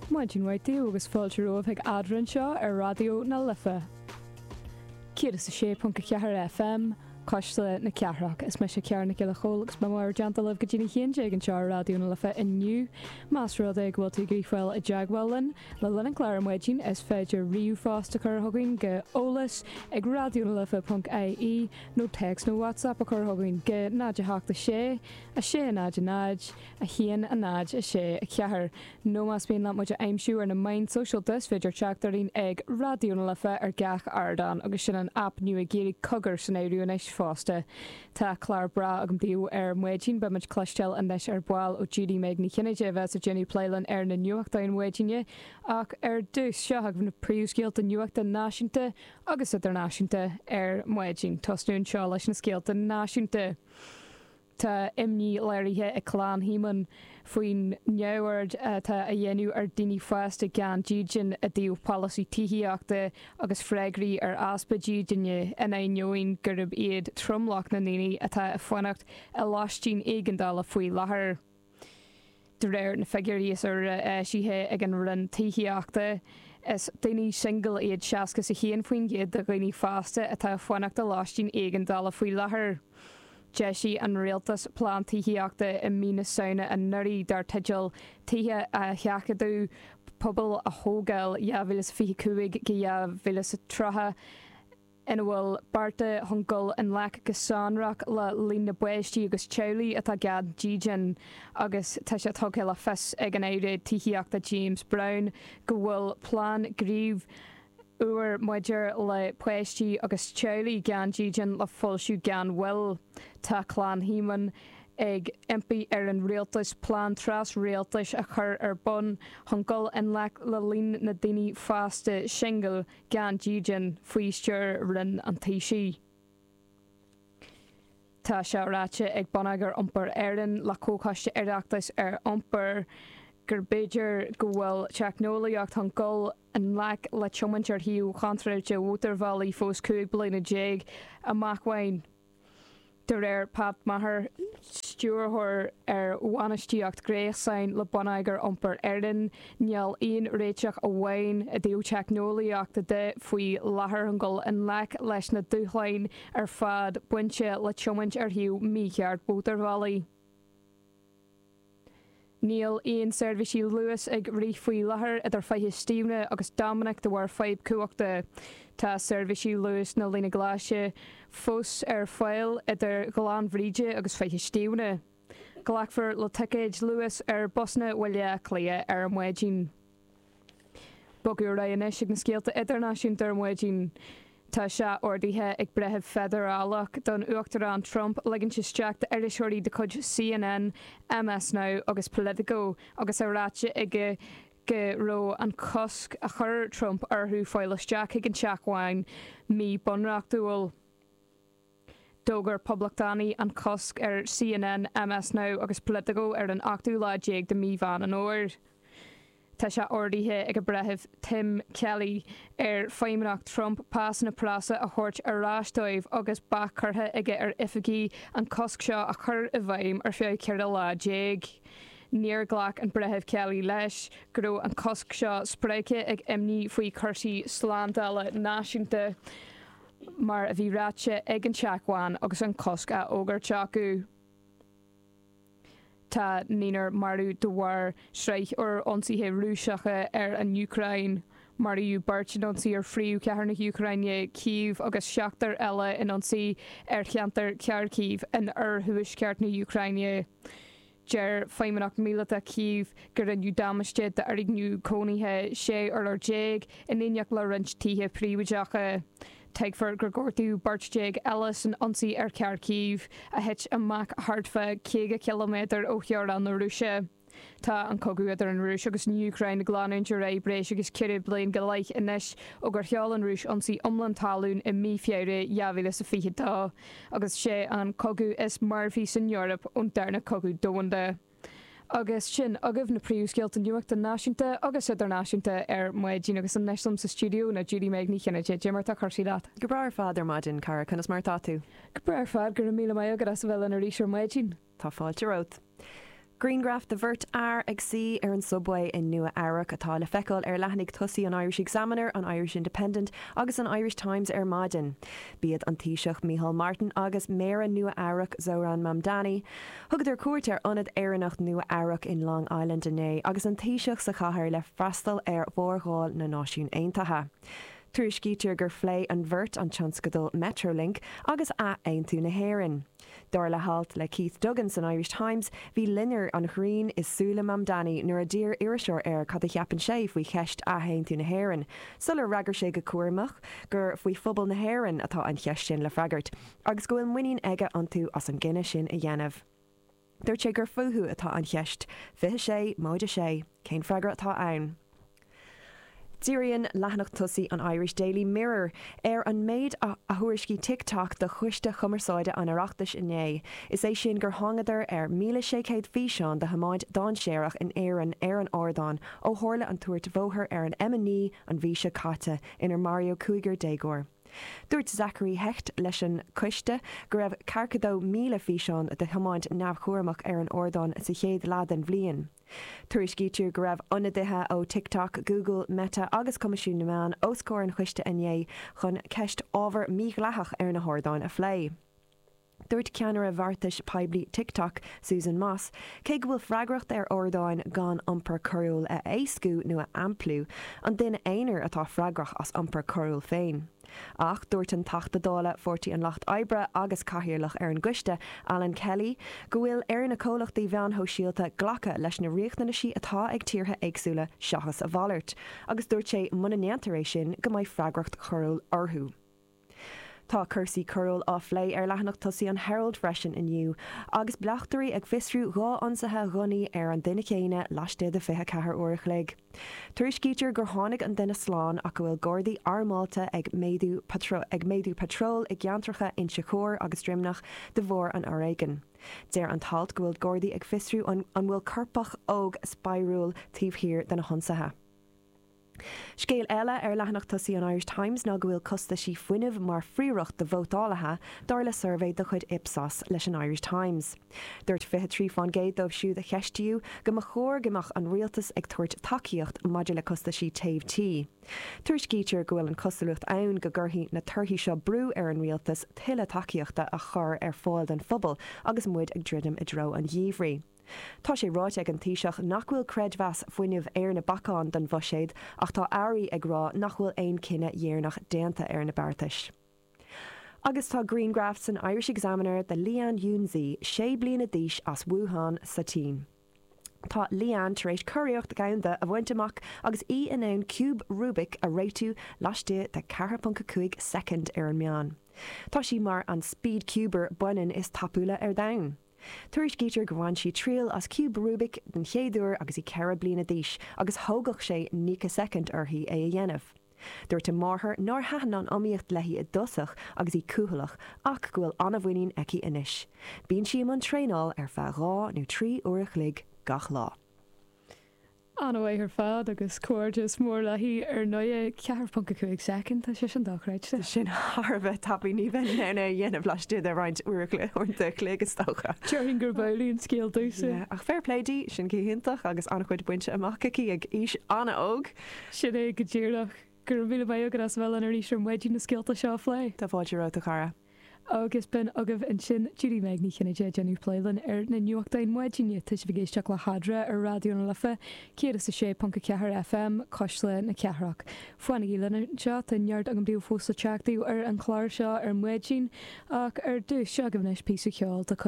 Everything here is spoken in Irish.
Maidin mhaith daoibh agus fáilte romhaibh chuig Eadra anseo ar Raidió na Life 106.4 FM, Cuisle na Cathrach. Is mise Ciara Nic Giolla Chomhaill agus beidh mé in bhur dteannta libh go dtí an haon déag anseo ar Raidió na Life inniu. Más rud é go bhfuil tú ag iarraidh fáil i dteagmháil linn le linn an clár ar maidin is féidir ríomhphost a chur chugainn go eolas ag raidionalife.ie nó téacs nó WhatsApp a chur chugainn go 0 8 6 6 0 0 1, 0, 6, 4, nó más mian leat muid a aimsiú ar na meáin sóisialta is féidir teacht orainn ag Raidió na Life ar gach ardán agus sin an aip nua ag iarraidh cogar san áireamh anois fosta. Tá clár breá agam daoibh ar maidin, beidh muid ag cloisteáil anois ar ball ó Judy Meg Ní Chinnéide a bheas ag déanamh plé linn ar na nuachtáin mhaidine ach ar dtús seo agaibh na príomhscéalta nuachta náisiúnta agus idirnáisiúnta ar maidin. Tosnú anseo leis na scéalta náisiúnta. Tá imní léirithe ag Clann Shíomóin faoin neamhaird atá á dhéanamh ar dhaoine fásta gan dídean i dtaobh polasaí tithíochta agus freagraí ar easpa dídine in ainneoin gurb iad tromlach na ndaoine atá ag fanacht i lóistín éigeandála faoi láthair. De réir na figiúirí is úire eisithe ag an Roinn Tithíochta, is daoine singil iad 61% de dhaoine fásta atá ag fanacht i lóistín éigeandála faoi láthair. D'eisigh an rialtas plean tithíochta i mí na Samhna anuraidh dar teideal Tithe a Sheachadadh, Pobail a Thógáil 2025-2030, ina bhfuil bearta chun dul i ngleic go sonrach le líon na bpáistí agus teaghlaigh atá gan dídean agus tá sé tugtha le fios ag an Aire Tithíochta James Browne go bhfuil plean gnímh úr maidir le páistí agus teaghlaigh gan dídean le foilsiú gan mhoill. Tá Clann Shíomóin ag impí ar an Rialtas plean tras-Rialtais a chur ar bun chun dul i ngleic le líon na ndaoine fásta singil gan dídean faoi stiúir Roinn an Taoisigh. Tá sé ráite ag Bonneagar Iompair Éireann le Comhchoiste Oireachtais ar Iompar gur b'fhéidir go bhfuil teicneolaíocht chun dul i ngleic le tiomáint ar thaobh chontráilte mhótarbhealaigh fós cúig bliana déag amach uainn. de réir Pat Maher, stiúrthóir ar bhainistíocht gréasáin le Bonneagar Iompair Éireann, níl aon réiteach amháin i dtaobh teicneolaíochta de faoi láthair chun dul i ngleic leis na dúshláin ar fad bainte le tiomáint ar thaobh mícheart mhótarbhealaigh. Níl aon seirbhísí Luas ag rith faoi láthair idir Faiche Stiabhna agus Dominic de bharr fadhb cumhachta. Tá seirbhísí Luas na Líne Glaise fós ar fáil idir Ghleann Bhríde agus Faiche Stiabhna. Glacfar le ticéid Luas ar bhusanna Bhaile Átha Cliath ar maidin. Bogadh ar aghaidh anois ag na scéalta idirnáisiúnta ar maidin. Tá sé ordaithe ag breitheamh feidearálach don Uachtarán Trump ligean isteach d'iriseoirí de chuid CNN, MS Now agus Politico agus é ráite aige go raibh an cosc a chuir Trump orthu fáil isteach chuig an Teach Bhán míbhunreachtúil. D'fhógair poblachtánaigh an cosc ar CNN, MS Now agus Politico ar an ochtú lá déag de Mí Mheán an Fhómhair. Tá sé ordaithe ag an Breitheamh Tim Kelly ar Fheidhmeannacht Trump pásanna preasa a thabhairt ar ais dóibh agus bac curtha aige ar oifigigh an cosc seo a chur i bhfeidhm ar feadh ceithre lá déag. Níor ghlac an Breitheamh Kelly leis go raibh an cosc seo spreagtha ag imní faoi chúrsaí slándála náisiúnta. mar a bhí ráite ag an Teach Bhán agus an cosc á fhógairt acu. Tá naonúr marbh de bharr sraith úr ionsaithe Rúiseacha ar an Úcráin. Maraíodh beirt in ionsaí ar phríomhchathair na hÚcráine, Cív, agus seachtar eile in ionsaí ar cheantar Kharkiv in oirthuaisceart na hÚcráine. Deir Feidhmeannacht Míleata Chív go ndearnadh damáiste d'fhoirgneamh cónaithe 16 urlár in éineacht le roinnt tithe príobháideacha. Tuigtear gur gortaíodh beirt déag eile san ionsaí ar Kharkiv, a thit amach thart fá 50 ciliméadar ó theorainn na Rúise. Tá an cogadh idir an Rúis agus an Úcráin ag leanúint ar aghaidh breis agus ceithre bliain go leith anois, ó gur sheol an Rúis ionsaí iomlán talún i mí Feabhra 2022. agus sé an cogadh is marfaí san Eoraip ón darna cogadh domhanda. Agus sin agaibh na príomhscéalta nuachta náisiúnta agus idirnáisiúnta ar maidin agus anois liom sa stiúideo ná Judy-Meg Ní Chinnéide. Dé mar atá cúrsaí leat? Go breá ar fad ar maidin, a chara, conas mar atá tú? Go breá ar fad, go raibh míle maith agat as a bheith linn arís ar maidin. Tá fáilte romhat. Griangraf de bheirt fhear ag suí ar an Subway i Nua Eabhrac atá le feiceáil ar leathanaigh tosaigh an Irish Examiner, an Irish Independent agus an Irish Times ar maidin. B'iad an Taoiseach Micheál Martin agus Méara Nua Eabhrac Zohran Mamdani. Thugadar cuairt ar ionad Éireannach Nua Eabhrac in Long Island inné agus an Taoiseach sa chathair le freastal ar mhórdháil na Náisiún Aontaithe. Tuairiscítear gur phléigh an bheirt an tionscadal Metrolink agus athaontú na hÉireann. Dar le halt le Keith Duggan san Irish Times, bhí loinnir an ghrinn i súile Mamdani nuair a d'iarr iriseoir air cad a cheapann sé faoi cheist athaontú na hÉireann, sular fhreagair sé go cúramach gur faoi phobal na hÉireann atá an cheist sin le freagairt agus go bhfuil muinín aige iontu as an gcinneadh sin a dhéanamh. Dúirt sé gur fúthu atá an cheist, fiche sé, móide sé, cén freagra atá ann? Díríonn leathanach tosaigh an Irish Daily Mirror ar an méid a thuairiscigh TikTok do Choiste Chumarsáide an Oireachtais inné, is é sin gur thángadar ar 1,600 físeán de thiomáint dainséarach in Éirinn ar an ardán ó tharla an tuairt bhóthair ar an M9 an mhí seo caite inar maraíodh cúigear déagóir. Dúirt Zachary Hecht leis an gcoiste go raibh 42,000 físeán de thiomáint neamhchúramach ar an ardán sa chéad leath den bhliain. Tuairiscítear go raibh ionadaithe ó TikTok, Google, Meta agus Coimisiún na Meán os comhair an choiste inné chun ceist ábhar mídhleathach ar na hardáin a phlé. Dúirt ceannaire bheartais poiblí TikTok, Susan Moss, cé go bhfuil freagracht ar ardáin gan iompar coiriúil a éascú nó a aimpliú, an duine aonair atá freagrach as iompar coiriúil féin. Ach dúirt an Teachta Dála Pháirtí an Lucht Oibre agus cathaoirleach ar an gcoiste, Alan Kelly, go bhfuil ar na comhlachtaí mheán sóisialta glacadh leis na riachtanaisí atá ag tíortha éagsúla seachas a mhalairt agus dúirt sé muna ndéantar é sin go mbeidh freagracht choiriúil orthu. Tá cúrsaí coiriúil á phlé ar leathanach tosaigh an Herald freisin inniu agus bleachtairí ag fiosrú dhá ionsaithe ghunnaí ar an duine céanna laistigh de 24 uair a chloig. Tuairiscítear gur tháinig an duine slán ach go bhfuil Gardaí armáilte ag méadú patróil i gceantracha Inse Chór agus Droimneach de bharr an fhoréigin. Deir an t-alt go bhfuil Gardaí ag fiosrú an bhfuil coirpeach óg 'spraíúil' taobh thiar de na hionsaithe. Scéal eile ar leathanach tosaigh an Irish Times ná go bhfuil costaisí fuinnimh mar phríoracht do vótálaithe, dar le suirbhé de chuid Ipsos leis an Irish Times. Dúirt 23 fán gcéad dóibh siúd a cheistíodh go mba chóir go mbeadh an rialtas ag tabhairt tacaíocht maidir le costaisí téimh tí. Tuairiscítear go bhfuil an cosúlacht ann go gcuirfidh na torthaí seo brú ar an rialtas tuilleadh tacaíochta a chur ar fáil don phobal agus muid ag druidim i dtreo an gheimhridh. Tá sé ráite ag an Taoiseach nach bhfuil creidmheas fuinnimh ar na bacáin don bhuiséad ach tá airí ag rá nach bhfuil aon cinneadh dheireanach déanta ar na beartais. Agus tá grianghraf san Irish Examiner de Leanne Junsy, sé bliana d'aois as Wuhan sa tSín. Tá Leanne tar éis curiarracht dhomhanda a bhaint amach agus í in ann ciúb Rubik a réitiú laistigh de 4.5 soicind ar an meán. Tá sí mar an speed cuber baineann is tapúla ar domhan. Tuairiscítear go bhain sí triail as ciúb Rubik den chéad uair agus í ceithre bliana d'aois agus thógadh sé nócha soicind uirthi é a dhéanamh. Dúirt a máthair nár thaitin an iomaíocht léi i dtosach agus í cúthaileach ach go bhfuil an-mhuinín aici anois. Bíonn sí i mbun traenáil ar feadh dhá nó trí uair a chloig gach lá. Ana-mhaith ar fad agus comhghairdeas mór léi ar ndóigh. 4.5 soicind, tá sé sin dochreidte! Sin thar a bheith tapaidh, ní bheinn in ann é a dhéanamh laistigh de roinnt uaireanta an chloig is dócha! Déarfainn gurb amhlaidh an scéal domhsa. Ach fair play di, sin go hiontach agus an-chuid bainte amach aici ag aois an-óg! Sin é go díreach. Go raibh míle maith agat as a bheith linn arís ar maidin na scéalta seo a phlé. Tá fáilte romhat a chara. Agus b'in agaibh ansin Judy-Meg Ní Chinnéide ag déanamh plé linn ar na nuachtáin maidine, tá sibh ag éisteacht le hAdhradh ar Raidió na Life 106.4 FM, Cuisle na Cathrach. Fanaigí linn anseo, tá neart agam daoibh fós le teacht daoibh ar an chlár seo ar maidin, ach ar dtús, seo agaibh anois píosa ceoil de chuid.